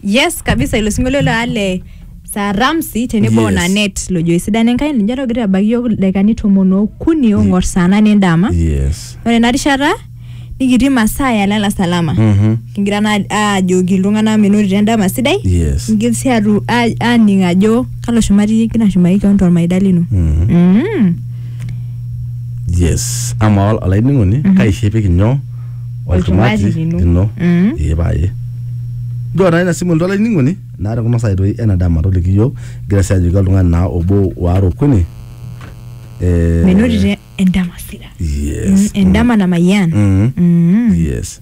yes kabisa ilo sinkolio le ale saa ramsi tenebo Yes. yes. nanet lojo esidano enkai ninche togira abaiki yiok ildaikani tomon okuni ong'or saa nane endama yes ore ena rishata nikitii masaa ya lala salama Mhm. kigira naa aajoki iltung'anak menotito endama sidai yes ngil sii atu a- aaning ajo kalo shumati iyie igira ashumaki keon tormaida lino Mhm. Mm. yes ama ol- olainining'oni kaishepiki nyoo Olchumati olchumati lino. lino Mm. ee paye nchoo naa ina simu oltwala ining'oni naa tekuna saai toi ena dama toliki iyiook igira sii ajoki oltung'ani naa obo waare okuni Eh, menotito endama sida yes Mm, endama namayian Mm, Mm. yes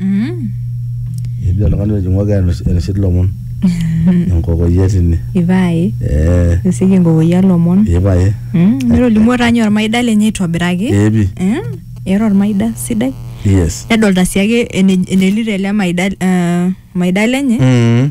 Mm. ejo oltung'ani ojing'oki enoshi lomon enkokoyia tine Ipae. ee Nisiki enkokoyia lomon. ipae Mm. Netolimuo taa ninye ormaida lenye aitobiraki. epi Mm. Era ormaida sidai. yes Nedolta sii ake ene- enelito ele maida eh, maida lenye. mm.